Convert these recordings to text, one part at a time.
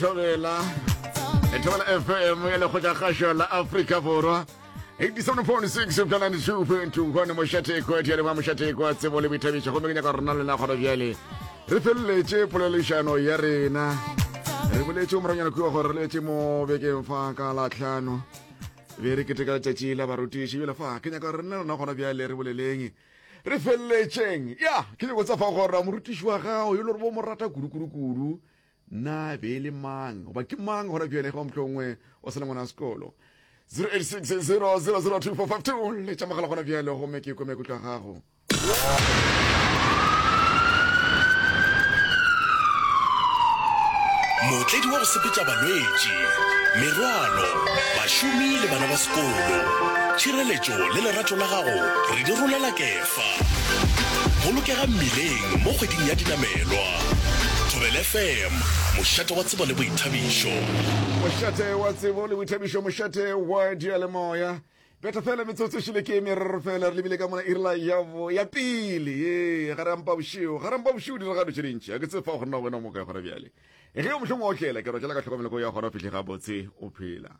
thobela thobela fm ya lekgotla kgašo la afrika borwa 87.6 upša 92.2 gone mošatheko ya dialema mošatheko a tsebo le boithabiša gomme ke nyaka rona lena kgona bjale re feleletše polelešano ya rena re boletše moranyana kua gore re letse mo bekeng fa ka latlhano be re keteka letšatši la barutiši bjale fa ke nyaka rena lena gona bjale re boleleng re feleletšeng ya ke nyako tsa fa gore morutiši wa gago yo le gore bo mo rata kudu-kudu-kudu Na be e le mang, goba ke mang gona bjale ge wa mohlongwe o sa le ngwana wa sekolo? 0860002452 le tša mogala gona bjale gomme ke ikome kutlwa gago. Mootledi wa go sepetša balwetši, merwalo, bašomi le bana ba sekolo. Tšhireletšo le lerato la gago re di rolela kefo. Fa. Bolokega mmileng mo kgweding ya dinamelwa. Thobela FM, mošate wa tsebo le boithabišo. Mošate wa tsebo le boithabišo, mošate wa diyalemoya. Beta fela metsotso e šele ke e meraro fela re lebile ka mona irla yabo ya pele ye ga re ampa bošeo ga re ampa bošeo diragalo tše dintši ga ke tse fa go nna wena o mokae gona bjale ge o mohlong wa otlela ke rotlela ka tlhokomeleko ya gona o fihle gabotse o phela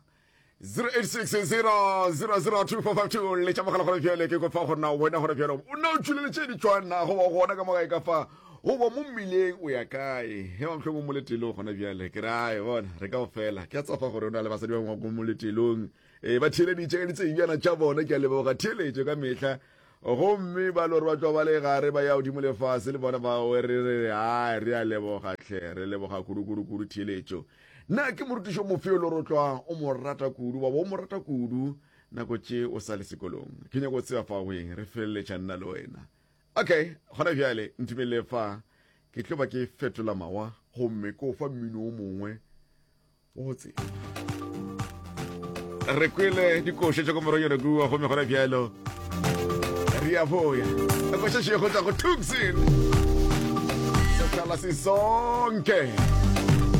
08600002552 le tša mogala gore bjale ke kopa gore na wena gore bjale o nna o tšweleletše ditšwana go ba gona ka mogae ka fa goba mo mmileng o ya kae ge wa mohlomong mo letelong gona bjale ke rae bona re ka go fela ke a tsafa gore o na le basadi ba ngwako mo letelong um ba theeleditše ka ditsebjana tša bona ke a leboga theeletšo ka mehla gomme ba lore ba tšwa ba le gare ba ya godimo lefase le bona ba re re a re a leboga tlhe re leboga kudu-kudu-kudu theeletšo Na ke morutiši o mofe yo le gore tlwa o mo rata kudu wa bo o mo rata kudu nako tše o sa le sekolong? Ke nyako tseba fa weng re feleletša nna le wena. Okay, gona bjale ntumelele fa ke tlo ba ke fetola mawa gomme ko fa mmino o mongwe wa go tseba. Re kwele dikoša tša ko moronyana kua gomme gona bjalo re a boya. Koša še go tla go Tucson. Sekala se sonke.